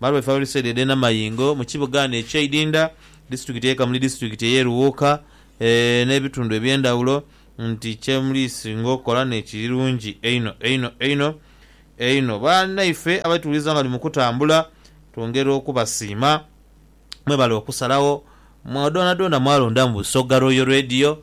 Maru e Fauriside edhe Namayingo mu kibuga ghano e Kyaidinda, disiturikiti ye Kamuli disiturikiti eye Luwuuka ne bitundu ebyendhawulo nti kyemulisinga okola nekiri lungi einho einho einho einho. Banaife abaituwuliza nga tuli mukutambula twongera okubasiima. Mwebale okusalawo mwa dhoonadhoona mwalonda mu Busoga Royal Radio.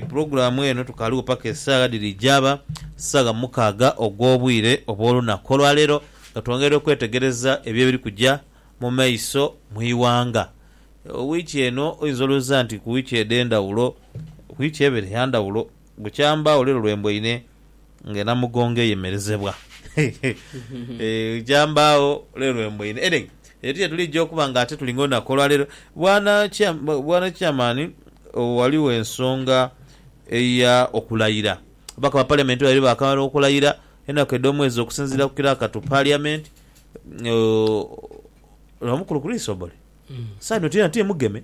Pulogulaamu eno tukaaliwo paka esaagha dhiri jaaba saagha mukaaga ogw'obwire obw'olunaku olwaleero nga twongera okwetegereza ebyo ebiri kuja mu maiso mu ighanga. Wiiki eno oyinza olowooza nti ku wiiki edh'endhawulo, wiiki ebeere ya ndhawulo. Bukya mbagho lero lwe mbweine nga enamugongo eyemerezebwa eeh bukya mbagho lero lwe mbweine edheg eti yetulija okuba nga ate tulinga olunaku olwa lero bwana bwana chairman ghaligho ensonga eya okulayira ababaka ba parliament babiri bakamala okulayira enaku edho mwezi okusinzira ku kiraka to parliament ooh lwa mukulu Chris obore saino tiyena ti mugeme.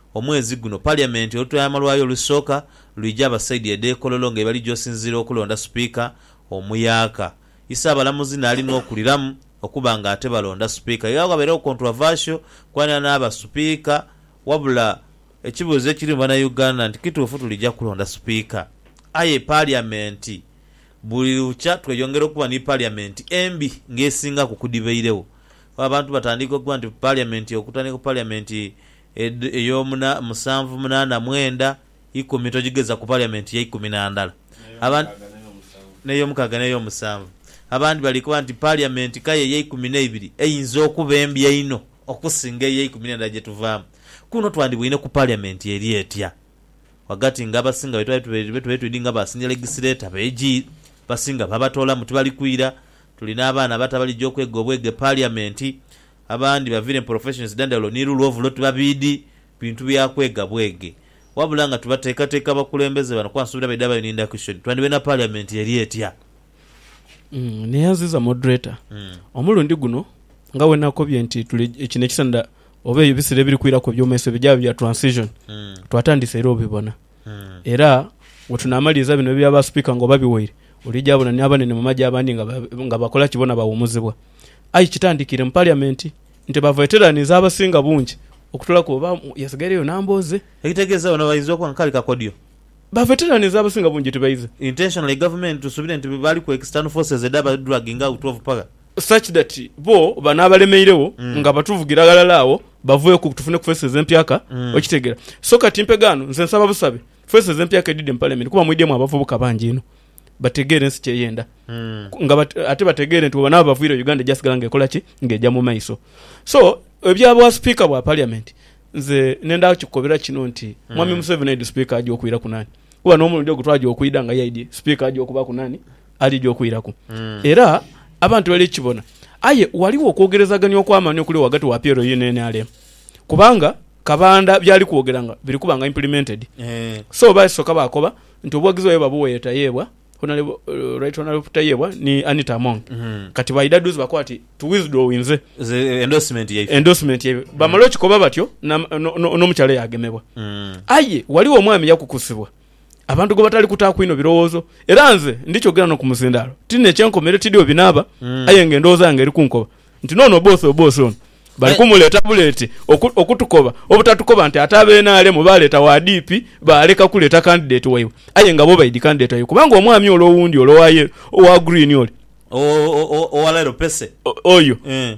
Omwezi guno Parliament olutwaiama lwayo olusooka lwija abasaidha edhekololo nga yebali josinziira okulonda Sipiika omuyaaka, Isaabalamuzi naali nokuliramu okuba nga ate balonda Sipiika era wabeerewo controversial kwanira naaba Sipiika wabula ekibuuzo ekiri mu bana Uganda nti kituufu tulija kulonda Sipiika? Aye Parliament buli lukya tweyongera okuba ni Parliament embi nga esingaku kudhibeirewo kuba abantu batandiika okuba nti Parliament okutandika ku Parliament Ed ey'omu na musanvu munaana mwenda ikumi togigeza ku Parliament ya ikumi na ndala. Abandi N'eyomukaaga n'ey'omusanvu. Abandi bali koba nti Parliament kaya eya ikumi n'eibiri eyinza okuba embi einho okusinga eya ikumi n'endala gye tuvaamu. Kuno twandibwoine ku Parliament eri etya? Wagati nga abasinga be twali be tubaire twidinga ba Senior Legislator ba AG, basinga baabatoolamu tibali kwira. Tulina abaana abato abalija okwega obwega e Parliament. Abandi bavire mu professions dhandhaulo ni lulwo ovulo tibabiidi bintu bya kwega bwege. Wabula nga tubateekateeka abakulembeze bano kuba nsuubira baidha bayo ni ndakishoni, twandhibaire na parliament eri etya? Neyanziza Moderator omulundi guno nga bwenakobye nti tuli kino ekiseenda oba ebisera ebiri kwiraku ebyomaiso bijaabe bya transition, twatandise era obibona. Era bwe tunaamaliriza bino ebya baasipiika nga obabiwaire, oliija bona ni abanene mu magye abandi nga ba- nga bakola ki? Bona bawuumuzibwa. Aye kitandikiire mu Paliyamenti nti ba veterans abasinga bungi okutoolaku oba yasigaireyo Nambooze. Ekitegeeza bona bainza okuba nga kali kakodyo. Ba veterans abasinga bungi tibaize. Intentionally gavumenti tusuubire nti bali ku external forces edha ba dragging out of power. such that bo bano abalemeireo nga batuvugira ghalala agho baveeku tufune ku faces empyaka okitegera so kati mpega ghano nze nsaba busabe faces empyaka edhidhe mu parliament kuba mwidhemu abavubuka bangi inho bategeere ensi kyeyenda nga bat ate bategeere nti bwebanaba bavwiireo Uganda eja sigala nga ekolaki nga eja mu maiso so ebya bwa speaker bwa parliament nze nenda kikukobera kino nti mwami Museveni aidhi speaker aja okwiraku nani kuba n'omulundi ogwo twaja okwidha nga yaidhi speaker aja okubaku nani alidha okwiraku, era abantu balikibona. Aye ghaligho okwogerezagania okw'amaani okuliwo ghagati wa Pierro ye NRM, kubanga Kabanda by'ali kwogera nga biri kuba nga implemented. So basoka baakoba nti obuwagizi bwaibwe babuwa ye Tayebwa, Right Honourable Tayebwa ni Anita Among. Kati baidha dhuuzi bakoba ati tu withdrawinze endorsement yaibwe. Bamala okikoba batyo n'omukyala yaagemebwa. Aye ghaligho omwami yakukusibwa. abantu gwe batali kutaaku inho birowoozo. Era nze ndikyogera n'oku muzindaalo, ti nina ekyenkomeire, tidhi we binaaba, aye ng'endowooza yange eri kunkoba nti n'ono oboose oboose ono bali kumuleeta buleete oku, okutukoba. Obutatukoba nti ate aba NRM baaleeta wa DP, baaleka kuleeta candidate waibwe, aye nga bo baidhi candidate waibwe kubanga omwami ole owundi ole owa yellow, owa green ole. O, o, o, owa Lero Pese. O, oyo. Eeh.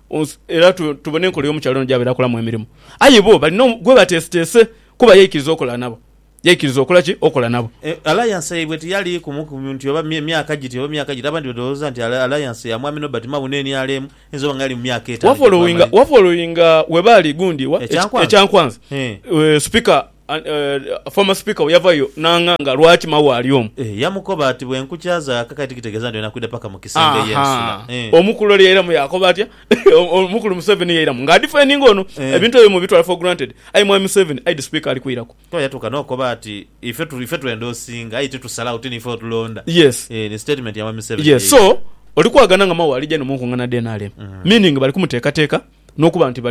era tubone enkola y'omukyala ono gy'abaire akolamu emirimo. Aye bo balina gwe bateeseteese kuba yaikiriza okola nabo. Yaikiriza okola ki? Okola nabo. Alliance yaibwe tiyali kumu ku nti oba myaka giti oba myaka giti. Abandi badhowooza nti alliance ya Mwami Nobert Mao n'NRM eyinza oba nga yali mu myaka etaano gye twamala. Wafolowinga we baali gundi wa? Ekyankwanzi. Ekyankwanzi. Eeh. Supika Former speaker we yavayo nanganga lwaki mawe ali omu. Eeh yamukoba ati bwenkukyaza akakati kitegeza nti oyina kwida paka mu kisenge ye nsula eeh. Ahaa omukulu oli yairamu yakoba atya omukulu museveni yairamu nga adifendinga ono ebintu ebyo mubitwala for granted aye mwami museveni aidhi speaker ali kwiraku. Kuba yatuka nokoba ati ife ife twenda osinga aye titusalagho tinife otulonda yes eeh ni statement ya mwami museveni yes so yeidha. Oli kwagana nga mawe alija eno munkungana dha nrm meaning bali kumutekateka nokuba nti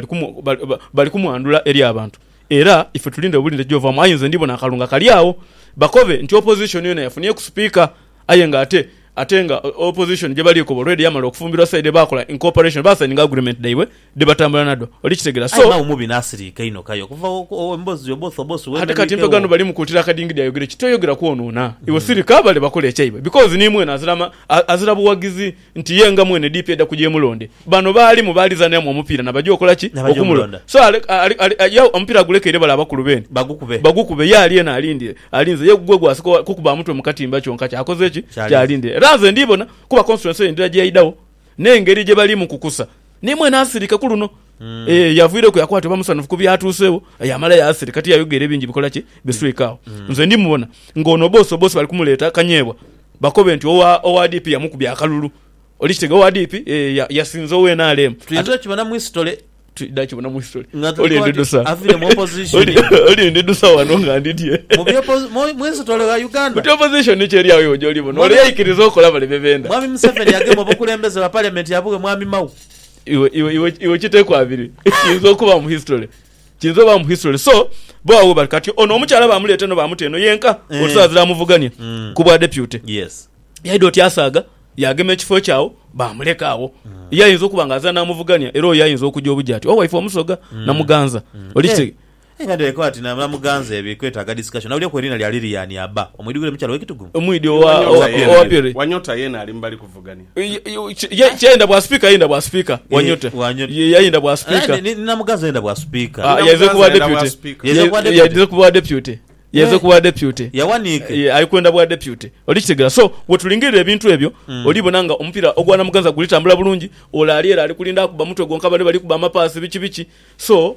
bali kumwandhula eri abantu. Era ife tulinde obulinde gyovaamu aye nze ndibona akalu nga kali agho bakobe nti opposition yona yafuniye ku speaker aye nga ate ate nga opposition gyebali ekoba already yamala okufumbirwa side bakola incorporation ba signinga agreement dhaibwe dhebatambula nadho oli kitegera Aye so mawe mubi nasiriika inho kaye okuva wo emboozi Oboth Oboth ate kati wemereike mpegano wo. bali mukuutira akadingidi ayogere ki toyogera kwonoona iwe sirika bale bakole ekyaibwe because nimwena azira ma a azira buwagizi nti ye nga mwene DP eda kujemulonde bano baalimu baalizanira mu omupiira nabaja okola ki? Nabaja Okumulonda. omulonda. So ale, ale, ale, a, ya, omupiira agulekeire bale abakulu beene Bagukube. bagukube ye ali eno alindire, alinze ye gwe gwasooka owa- kukuba amutwe mu katimba kyonka kyakoze ki? Kyalinze. Kyalindire. Era nze ndiibona kuba constituency eyo ndira gyeidagho n'engeri gyebalimu kukusa, ni mwene asirike ku luno. Eh, yavwireku yakoba ati oba musanhufu ku byatuusewo, yaamala yaasirika. Tiyayogera ebingi bikola ki, biswika agho. Nze ndimubona ng'ono boss boss bali kumuleeta kanyeebwa bakobe nti owa, owa DP yamukubya akalulu. Oli kitegeera? Owa DP, eh, ya- yasinze owa NRM. Tuyinza okibona mu history. Twidha kibona mu history. Nga tuli Oli koba ndi nti dusa. aviire mu opposition. Oli- Oli ndi dusa wano nga ndi dye. Mu bya opposi- mu- mu history wa Uganda. Buti opposition ni kyeri agho iwe gy'oli bona. Mwami- Ole yaikiriza okola bale bye benda. Mwami Museveni yagema obukulembeze bwa parliament yabugha mwami Mao. Iwe, iwe, iwe, iwe kiteku abiri. Kiyinza okuba mu history. Kiyinza oba mu history. So, bo agho bali kati ono omukyala bamuleeta eno bamuta eno yenka Eh. otusawo azira amuvugania Mm. ku bwa deputy. Yes. Yaidha oti asaaga yagema ekifo kye agho bamuleka agho. Ye ayinza okuba nga azira namuvugania era oyo ayinza okuja obuja ati owaife omusoga na muganza. Oli Eh, kite- Aye nga ndhireka oti na muganzi ebi kwetaga discussion na bulyoku eriina lya Lilian aba omwidhukiro mukyalo we Kitugu. Omwidhi owa owa pili. Wanyota yena ali mubali kuvugania. Yayenda bwa speaker yayenda bwa speaker wanyota ye yayenda bwa speaker ni namuganzi yayenda bwa speaker yaize kubwa deputy yaize kubwa deputy yaize kubwa deputy yawaniike ali kwenda bwa deputy oli kitegera so wetulingirira ebintu ebyo oli bona nga omupira ogwa namuganza guli tambula bulungi ole ali ere ali kulinda akuba mutwe gwonka bane bali kuba amapaasi biki biki so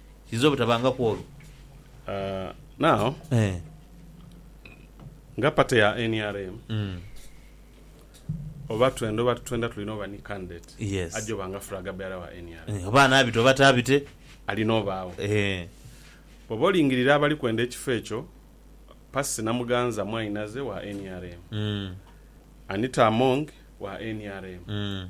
Kiyinza obutabangaku olwo. Uh, now Eh. nga party ya nrm Mm. oba twenda oba titwenda tulina oba ni candidate Yes. ajja oba nga flag bearer wa nrm Eh, Oba anaabita oba taabite. alina obaagho. Eh. Bwoba olingirira abali kwenda ekifo ekyo, Percy Namuganza Mwainaze wa nrm, Mm. Anita Among wa nrm, Mm.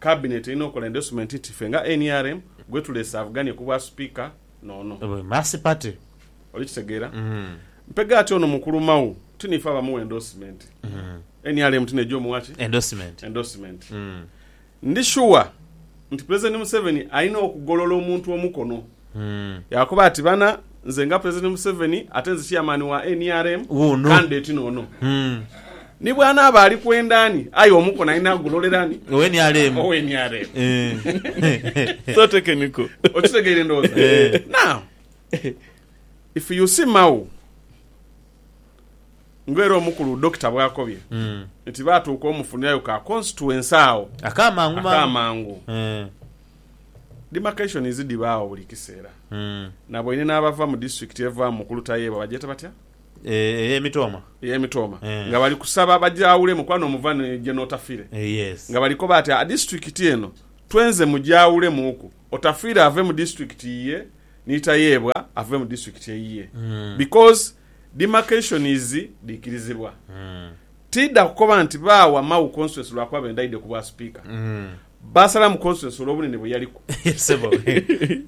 Kabineeti erina okola endorsement nti ffe nga nrm gwetulese avuganye ku bwa Sipiika n'ono. Bwe Mercy Party. Oli kitegeera? Mpege ati ono mukulu Mao ti niife abamuwa endorsement. Nrm ti neja omuwa ki? Endorsement. Endorsement. Ndi sure nti Pulezidenti Museveni alina okugolola omuntu omukono. Yaakoba ati, Bana, nze nga Pulezidenti Museveni ate nze Chairman wa nrm, Wuuno. candidate n'ono. Ni bw'anaaba ali kwenda ani, aye omukono alina kugulolera ani? Owe nrm. Owe nrm. Eh. So technical. Okitegeire ndowooza? Eh. Now, if you see Mao, nga era omukulu Dokita bw'akobye nti baatuuka omufunirayo ka constituency agho Ak'amangu mangu. ak'amangu. Eh. Demarcations dhibaagho buli kiseera. Naboine n'abava mu disitulikiti evaamu ku Lutayeebwa bagyeta batya? Ey'emitooma. Ey'emitooma. Nga bali kusaba bagyawulemu kuba n'omuva ni gye n'Otafiire. Nga bali koba ati disitulikiti eno twenze mugyawulemuuku, Otafiire ave mu disitulikiti yiye ni Tayeebwa ave mu disitulikiti eyiye. Because demarcations dhiikirizibwa. Tiidha kukoba nti baawa Mau Constituency lwakuba bendhaidhe ku bwa Sipiika. Baasalamu Constance olw'obunene bwe yaliku. Ye sebo.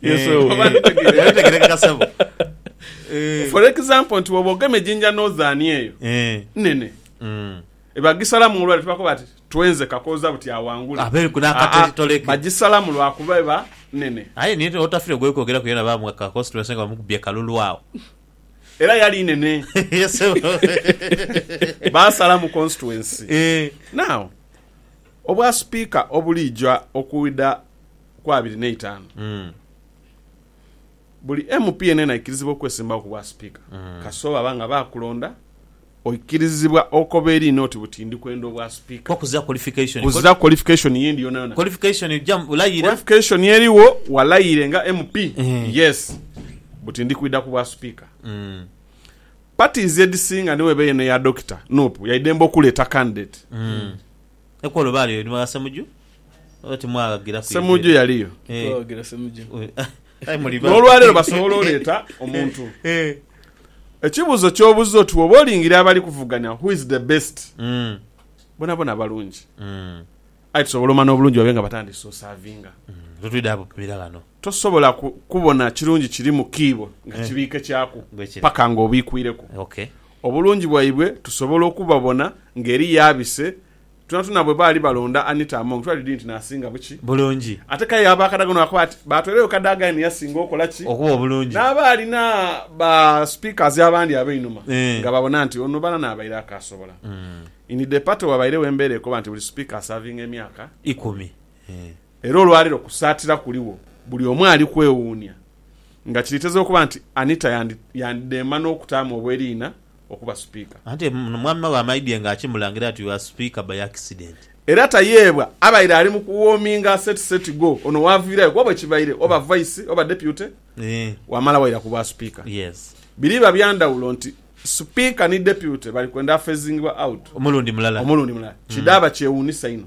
Yes, Eh, oba eh, ntegerekeka. yali tegerekeka sebo. Eh, For example nti bwoba ogemye Jinja Northern eyo eh, nene mm. ebagisalamu olwali tubakoba ati twenze kakooza buti awangule Abe ku n'akateli Aa, toleke. bagisalamu lwakuba eba nene Aye niye otafire gwekwogera ku yena bamuwa ka constituency nga bamukubye kalulu awo. era yali nene Ye sebo. baasalamu constituency Eh, now Obwa Sipiika obuliija okwidha ku abiri n'eitaanu, buli MP yeneena aikirizibwa okwesimbawo ku bwa Sipiika. Kasita baba nga baakulonda, oikirizibwa okoba eri n'oti buti ndi kwenda obwa Sipiika. Kukuza qualification. Kuza qualification y'endi yonayona. Qualification ojja layira. Qualification eriwo walayire nga MP, yes, buti ndi kwidha ku bwa Sipiika. Parties edhisinga ni weba eno eya Dokita, nup, yaidembe okuleeta candidate. Ekwolo baali oyo ni mwana Semujju oba timwaghagiraku yegere? Semujju yaliyo. Titwaghagira Semujju. Aye muli babi. N'olwaleero basobola oleeta omuntu. Ekibuuzo ky'obuza oti bw'oba olingiria abali kuvuganya who is the best? Bonabona balungi. Aye tusobola omanha obulungi babe nga batandise osavinga. Totwidha bupimira ghano. Tosobola ku, kubona kirungi kiri mu kiibo nga Eh. kibiikekyaku Bwe kiri. paka nga obiikwireku. Ok. Obulungi bwaibwe tusobola okubabona nga eriyo abise. Twonatwona bwe baali balonda Anita Among, twali dii nti n'asinga buki. Bulungi. Ate k'aye aba akadagano baakoba bati, baatweleyo Kadaga aye ni yasinga okola ki? Okuba obulungi. N'aba alina ba speakers abandi ab'einhuma Eh. nga babona nti ono balana abaire akaasobola. In the party wabairegho embeera ekoba nti buli speaker asavinga emyaka ikumi. Ikumi. Eh. Era olwaleero kusaatira kuligho buli omu ali kwewuunia nga kiriiteza okuba nti Anita yandidheema n'okutaamu obweriina okuba Sipiika. Anti mwami we amaidhie nga akimulangira ati you are Speaker by accident. Era Tayebwa abaire ali mu kuwoominga aseti seti go ono waaviirayo kuba bwe kibaire oba Vice oba Deputy wamala waira ku Bwasipiika. Biriba bya ndhawulo nti Sipiika ni Deputy bali kwenda afezingibwa out omulundi mulala. Kidhaaba kyewuunisa inho.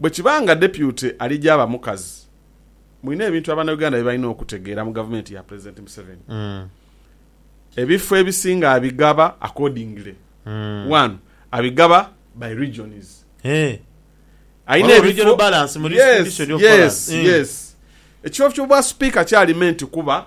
Bwe kiba nga Deputy ali gyaba mukazi, mulina ebintu Abanauganda bye balina okutegeera mu Gavumenti ya Pulezidenti Museveni. Ebifo ebisinga abigaba accordingly. One, abigaba by regions. Alina ebifo, yes, yes, yes. Ekifo ky'obwa Sipiika kya Alimenti kuba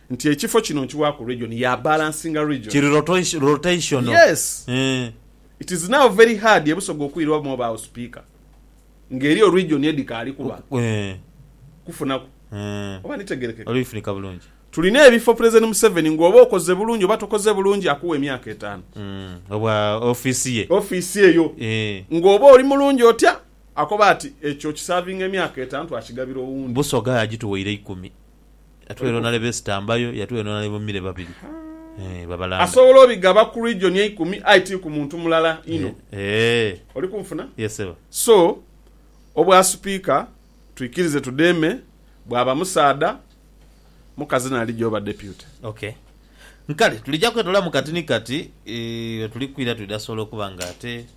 Nti ekifo kino nkiwaaku region ya balansinga region. Kiri rotational. Yes. Eeh. It is now very hard e Busoga okwirwamu obaagho Sipiika nga eriyo region edhikaali kuba kufunaku. Eeh. Oba ndhitegeerekeka? Oli kufunika bulungi. Tulina ebifo Pulezidenti Museveni nga oba okoze bulungi oba tokoze bulungi akuwa emyaka etaanu. Eeh. Obwa ofiisi ye. Ofiisi eyo. Eeh. Nga oba oli mulungi otya, akoba ati ekyo okisavinga emyaka etaanu twakigabira owundi. Busoga agituweire ikumi. Yatweyonona leba esitambayo, yatweyonona leba omire babiri eeh babalambe. Asobola obigaba ku region eikumi aye ti ku muntu mulala inho. Oli kunfuna? So obwa Sipiika twikirize tudheeme bwaba musaadha, mukazi n'alija oba Deputy. Ok. Kale tulija kwetolamu kati ni kati, wetuli kwira twidha sobola okuba nga ate.